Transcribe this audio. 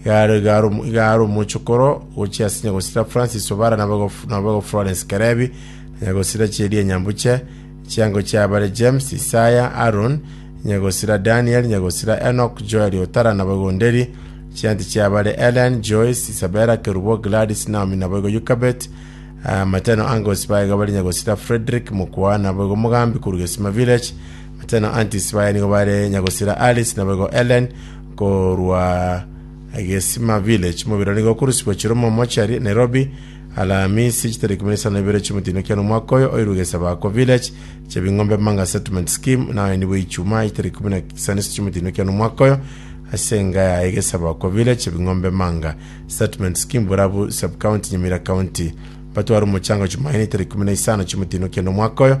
Igare igare omochokoro gochia ase nyagosira Francis Obara na boigo Florence Kerebi, na nyagosira chiria enyambuche, chiango chia bare James, Isaya, Aaron, nyagosira Daniel, nyagosira Enoch, Joel Otara na boigo Nderi, chianti chia bare Ellen, Joyce, Isabella, Kerubo, Gladys, Naomi na boigo Yukabet, amateno Angus baye gabare nyagosira Frederick, Mokwa na boigo Mogambi korwa Gesima Village, Ate na Antis baye nigo bare nyagosira Aris, naboigo Ellen, korwa Gesima Village. Omobere nigo okorusibwa chiromo mochari Nairobi, Alamisi chitaria ikomi na isano na ibere chiomotino kiane omwaka oyo, oirwe Gesabako Village, Chebing'ombe Manga Settlement Scheme, naye nibwe Ichuma chitaria ikomi na isano ase chiomotino kiane omwaka oyo, ase enga yaye Gesabako Village, Chebing'ombe Manga Settlement Scheme, Borabu Sub-County, Nyamira County. Batware omochango Jumaine itaria ikomi na isano chiomotino kiane omwaka oyo,